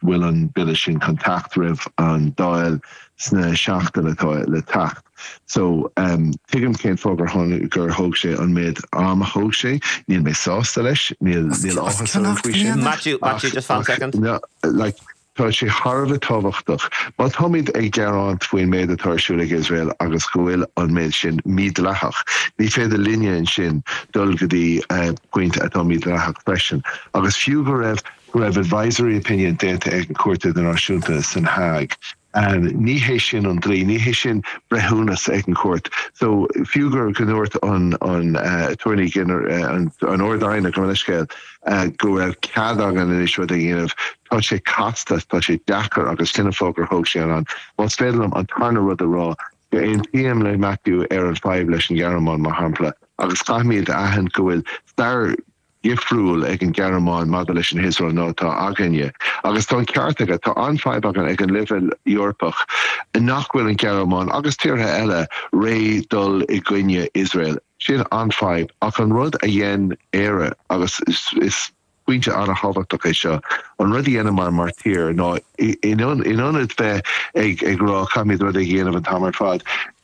bhfuil an Bille sin chun teacht roimh an Dáil sna seachtainí atá le teacht. So tuigim cén fáth gur tháinig, gur thóg sé an méad am a thóg sé. Níl mé sásta leis, níl, níl áthas orm faoi sin. Maitiú, Maitiú, just fan second. No, like, tá sé thar a bheith tábhachtach. Má táimid ag gearáint faoin méad atá ar siúl ag Iosrael agus go bhfuil an méad sin mídleathach, ní féidir linne ansin dul go dtí pointe atá mídleathach freisin. Agus fiú go raibh go raibh advisory opinion déanta ag an Cúirt Idirnáisiúnta san Hague. Ní hé sin an dlí, ní hé sin breithiúnas ag an chúirt. So fiú gur go ndúirt an an Aturnae, an an Ard-Aighne go raibh leithscéal, go raibh cead againn anois rud a dhéanamh, tá sé casta, tá sé deacair agus sin an fáth gur thóg sé an am. Más féidir liom an tarna rud a rá, aontaím le Maitiú ar an fadhb leis an Ghearmáin mar shampla agus caithfimíd a aithint go bhfuil stair, dhifriúil ag an Gearmáin maidir leis an hIosrael ná atá againne. Agus tá an ceart aige. Tá an fhadhb againn ag an leibhéal Eorpach nach bhfuil an Gearmáin agus tíortha eile réidh dul i gcoinne Iosrael. Sin an fhadhb. Ach an rud a dhein Éire, agus is pointe an-thábhachtach é seo, an rud a dheineamar mar thír ná in ionad bheith ag rá caithfimíd rud éigin a dhéanamh an t-am ar fad,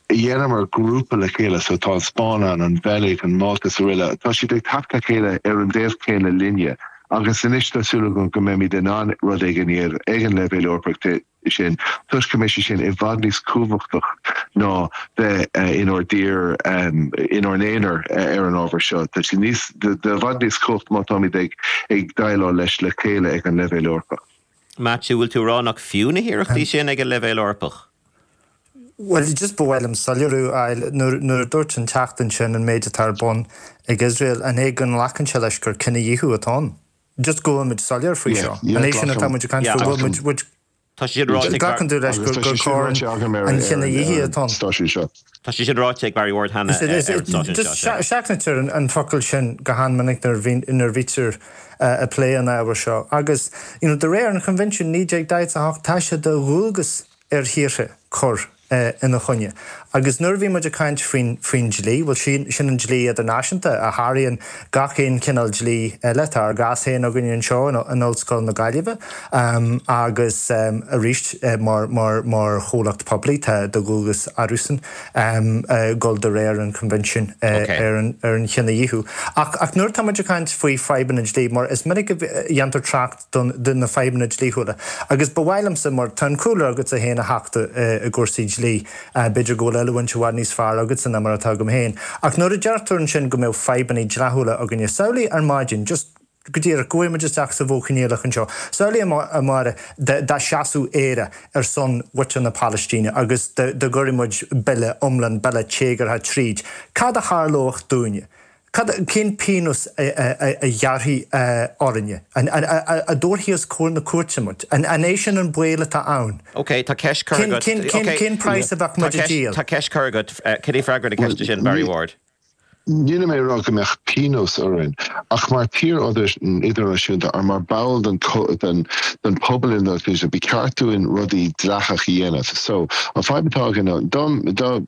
Dheineamar grúpa le chéile, so tá an Spáinn ann, an Bheilg, an Mhálta is aroile. Tá siad ag teacht le chéile ar an dtaobh céanna linne agus anois tá súil agam go mbeimid in ann rud éigin a dhéanamh ag an leibhéal Eorpach ansin toisc go mbeidh sé sin i bhfad níos cumhachtach ná bheith inár dtír, inár n-aonar ar an ábhar seo. Tá sé níos, i bhfad níos cumhacht má táimid ag ag déileáil leis le chéile ag an leibhéal Eorpach. Maitiú, Bhfuil tú a rá nach fiú na hiarrachtaí sin ag an leibhéal Eorpach? Bhuel, just ba mhaith liom soiléiriú a fháil. Nuair a dúirt an Teachta ansin an méid atá ar bun ag Iosrael, an é go nglacann sé leis gur cinedhíothú atá ann? Just go bhfuil muid soiléir faoi seo. An é sin atá muid ag caint faoi? Bhfuil muid. Tá sé sin ráite ag. Glacann tú leis gur coir an chinedhíothaithe atá ann? Tá sé sin ráite ag Barry Ward cheana ar an stáisiún seo, sea. Seachnaítear an focal sin go han-mhinic nuair a bhítear ag plé an ábhair seo agus de réir an Choinbhinsiúin 1948 tá sé de dhualgas ar thíortha cur ina choinne agus nuair a bhíonn muid ag caint faoin dlí, bhuel sin an dlí idirnáisiúnta a sháraíonn gach aon chineál dlí eile. Tá ár gcás féin againn anseo in Ollscoil na Gaillimhe agus arís mar chomhlacht poiblí tá de dhualgas orthusan dul de réir an Choinbhinsiúin ar an Chinedhíothú. Ach nuair atáimid ag caint faoi fadhbanna dlí, mar is minic a dhéantar trácht ar na fadhbanna dlíthiúla, agus ba mhaith liomsa, mar tá an-chúlra agatsa féin a Theachta i gcúrsaí dlí, B'fhéidir go bhfuil oiliúint i bhfad níos fearr agatsa ná mar atá agam féin. Ach nuair a deirtear ansin go mbeidh fadhbanna dleathúla againne, samhlaigh ar maidin, just go díreach, go rachaidh muid isteach sa Mhodh Coinníollach anseo. Samhlaigh, a Mháire, dá seasfadh Éire ar son mhuintir na Palaistíne agus dá gcuireadh muid bille iomlán, bille téagartha tríd. Cad a tharlódh dúinne? Cad, cén pionós a ghearrfaí orainne? An dtabharfaí os comhair na cúirte muid? An é sin an baol atá ann? Ok, tá ceist curtha agat. Cén, cén, cén praghas a bheadh muid ag díol? Tá ceist curtha agat, cad é freagra na ceiste sin, Barry Ward? Nílim ag rá go mbeadh pionós orainn, ach mar thír idirnáisiúnta or mar ball den den pobal idirnáisiúnta ba cheart dúinn rudaí dleathach a dhéanamh. So, an fadhb atá againn ná, dá, dá,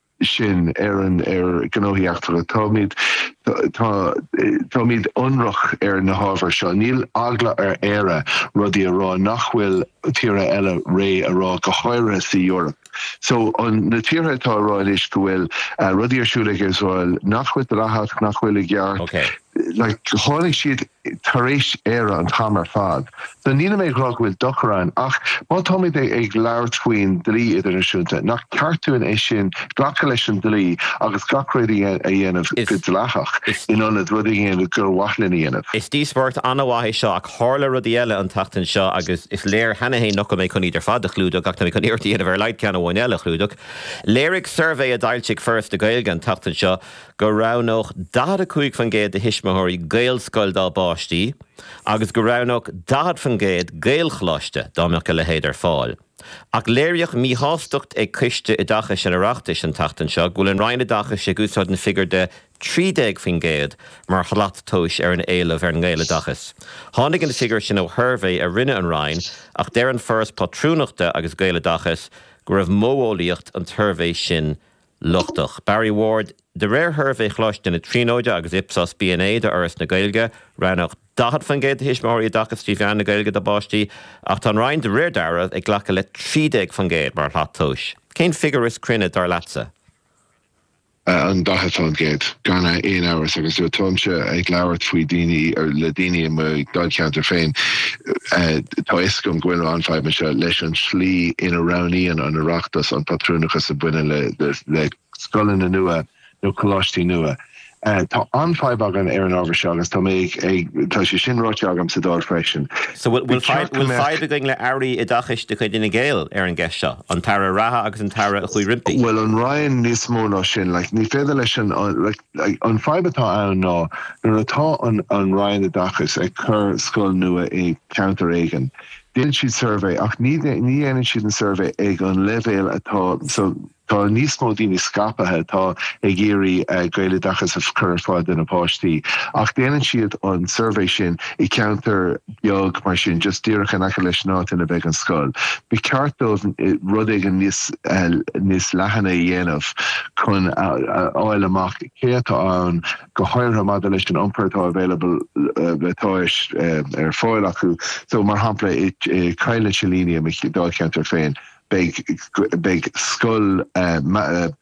sin Éireann ar ghnóthaí eachtracha. Táimid, tá, táimid ionraic ar na hábhair seo. Níl eagla ar Éire rudaí a rá nach bhfuil tíortha eile réidh le rá, go háirithe sa Eoraip. So, an, na tíortha atá ag rá anois go bhfuil rudaí ar siúl ag Iosrael nach bhfuil dleathach, nach bhfuil i gceart, like, tháinig siad tar éis Éire an t-am ar fad. So nílim ag rá go bhfuil dochar ann ach má táimid ag labhairt faoin dlí idirnáisiúnta, nach ceart dúinn é sin, glacadh leis an dlí agus gach rud a dhéanamh go dleathach in ionad rudaí a dhéanamh gur mhaith linn a dhéanamh? Is díospóireacht an-mhaith é seo ach tharla rudaí eile an tseachtain seo agus is léir cheana féin nach bhfuil mé chun iad ar fad a chlúdach ach tá mé chun iarracht a dhéanamh ar a laghad ceann amháin eile a chlúdach. Léirigh suirbhé a d'fhoilsigh Foras na Gaeilge an tseachtain seo, go roghnódh 45% de thuismitheoirí Gaelscoil dá bpáistí agus go roghnódh 40% Gaelcholáiste dá mbeadh a leithéid ar fáil. Ach léiríodh míshástacht ag Coiste Oideachais an Oireachtais an tseachtain seo go bhfuil an Roinn Oideachais ag úsáid an figiúr de 13% mar shlat tomhais ar an éileamh ar an nGaeloideachas. Tháinig an figiúr sin ó shuirbhé a rinne an Roinn ach deir an Foras Pátrúnachta agus Gaeloideachas go raibh modheolaíocht an tsuirbhé sin lochtach. Barry Ward, De réir shuirbhé Choláiste na Tríonóide agus Ipsos B&A d'Fhoras na Gaeilge, roghnódh 40% de thuismitheoirí oideachas trí mheán na Gaeilge dá bpáistí, ach tá an Roinn de réir dealraimh ag glacadh le 13% mar shlat tomhais. Cén figiúr is cruinne dar leatsa? An 40%, gan aon amhras, agus táimse ag labhairt faoi dhaoine, le daoine i mo dháilcheantar féin, Tá fhios agam go bhfuil an-fhadhb anseo leis an tslí ina roghnaíonn an Oireachtas an pátrúnachas a bhaineann le le scoileanna nua nó coláistí nua. Tá an-fhadhb againn ar an ábhar seo agus tá mé ag tá sé sin ráite agam sa Dáil freisin. So bhfuil bhfuil fadhb againn le Airí Oideachais de chuid Fhine Gael ar an gceist seo, an tAire reatha agus an tAire a chuaigh roimpi? Bhuel an Roinn níos mó ná sin, like ní féidir leis an like. An fhadhb atá ann ná nuair atá an Roinn Oideachais ag cur scoil nua i gceantar éigin, déanann siad suirbhé ach ní dhéanann siad an suirbhé ag an leibhéal atá, so tá níos mó daoine scaipthe atá ag iarraidh Gaeloideachas a chur ar fáil dá bpáistí ach déanann siad an suirbhé sin i gceantar beag mar sin, just díreach in aice leis an áit ina mbeidh an scoil. Ba cheart dóibh rud éigin níos níos leathan a dhéanamh chun a fháil amach cé atá ann, go háirithe maidir leis an iompar atá available atá ar fáil acu. So, mar shampla, i gCoill na Silíní, i mo Dháilcheantar féin, beidh beidh scoil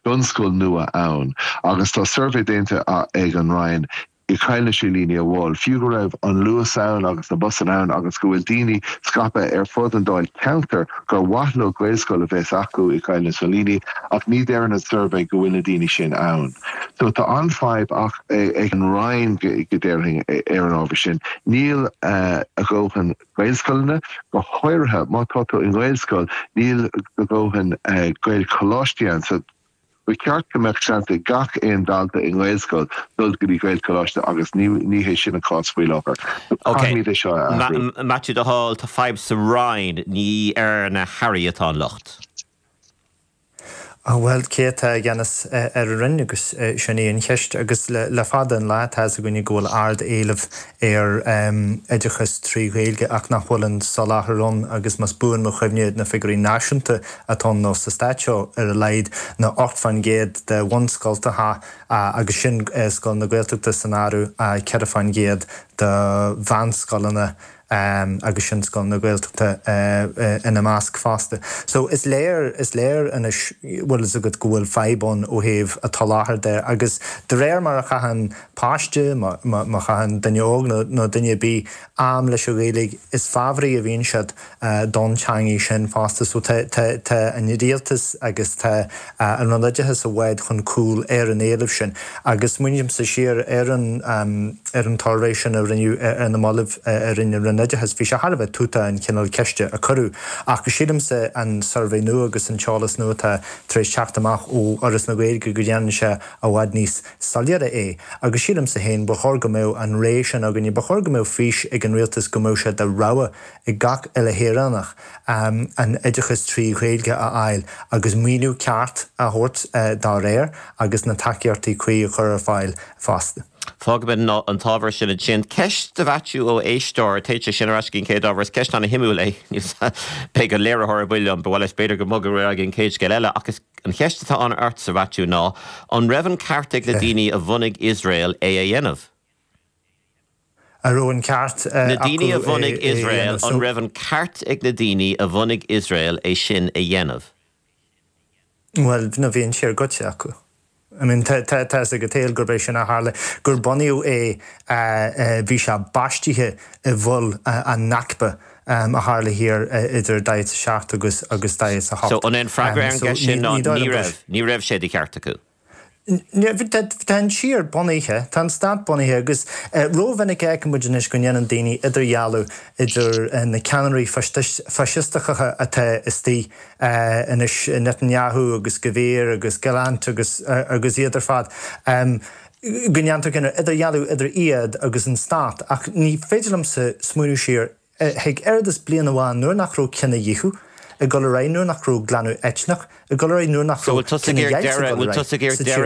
bunscoil nua ann agus tá suirbhé déanta ag an Roinn i gCoill na Silíní amháin. Fiú go raibh an Luas ann agus na busanna ann agus go bhfuil daoine scaipthe ar fud an Dáilcheantair gur mhaith leo Gaelscoil a bheith acu i gCoill na Silíní ach ní deir an suirbhé go bhfuil na daoine sin ann. So tá an-fhadhb ach ag an Roinn, déarfainn ar an ábhar sin. Níl a dhóthain Gaelscoileanna, go háirithe má tá tú i nGaelscoil, níl a dhóthain Gaelcholáistí ann. So. Ba cheart go mbeadh seans ag gach aon dalta i nGaelscoil dul go dtí Gaelcholáiste agus ní hé sin an cás faoi láthair. Caithfimíd é seo a athrú. A Mhaitiú, le do thoil, tá fadhb sa Roinn, ní ar na hAirí atá an locht. Bhuel, cé atá i gceannas ar an Roinn agus sin í an cheist agus le fada an lá tá's againne go bhfuil ard éileamh ar oideachas trí Ghaeilge ach nach bhfuil an soláthar ann agus más buan mo chuimhne na figiúirí náisiúnta atá ann nó sa stát seo ar a laghad ná 8 fán gcéad de bhunscoltacha agus sin scoileanna Gaeltachta san áireamh 4 fán gcéad de mheánscoileanna agus sin scoileanna Gaeltachta ina measc fosta. So is léir, is léir anois bhfuil fhios agat go bhfuil fadhb ann ó thaobh an tsoláthair de agus de réir mar a chaitheann páiste má chaitheann duine óg nó duine ar bith am leis an Ghaeilge is fabhraí a bhíonn siad don teangaidh sin fosta so tá an Rialtas agus tá an Roinn Oideachais i bhfad chun cúil ar an éileamh sin agus smaoinímse siar ar an tsuirbhé sin a rinneadh ar na mallaibh a rinne an Roinn Oideachais bhí sé thar a bheith tútach an cineál ceiste a cuireadh ach sílimse an suirbhé nua agus an t-eolas nua atá tar éis teacht amach ó Fhoras na Gaeilge go ndéanann sé i bhfad níos soiléire é. Agus sílimse féin, ba chóir go mbeadh an aidhm sin againne, ba chóir go mbeadh fís ag an Rialtas go mbeadh sé de rogha ag gach uile shaoránach an oideachas trí Ghaeilge a fháil agus maoiniú ceart a thabhairt dá réir agus na tacaíochtaí cuí a chur ar fáil fosta. Fágaimis an t-ábhar sin ansin. Ceist do Mhaitiú ó éisteoir, téann sé sin ar ais go dtí an chéad ábhar, is ceist an-shuimiúil é. Níl 's agam, beidh an léiritheoir ar buile liom, ba mhaith leis b'fhéidir go mbogfainn ar aghaidh go dtí an chéad scéal eile, ach is. An cheist atá agam ortsa, a Mhaitiú, ná, an raibh an ceart ag na daoine a bhunaigh Iosrael é a dhéanamh? An raibh an ceart acu é a dhéanamh? So. Na daoine a bhunaigh Iosrael, an raibh an ceart ag na daoine a bhunaigh Iosrael é sin a dhéanamh? Bhuel, bhí an tír goidte acu. I mean, tá a fhios ag an tsaol gurb é sin a tharla, gur bunaíodh é, bhí sé baistithe i bhfuil an Nakba a tharla thiar idir daichead is a seacht agus daichead is a hocht. So, an é an freagra ar an gceist sin ná, ní raibh, ní raibh sé de cheart acu? Tá an tír bunaithe, tá an stát bunaithe agus ró-mhinic a fheicimid anois go ndéanann daoine idirdhealú idir na ceannairí faisisteacha atá istigh anois Netanyahu agus Gvir agus Gallant agus agus iad ar fad go ndéantar cineál idirdhealú idir iad agus an Stát ach ní féidir liomsa smaoineamh siar chuig oiread is bliain amháin nuair nach raibh cinedhíothú ag dul ar aghaidh, nuair nach raibh glanadh eitneach ag dul ar aghaidh, nuair nach raibh cinedheighilt ag dul ar aghaidh sa tír seo.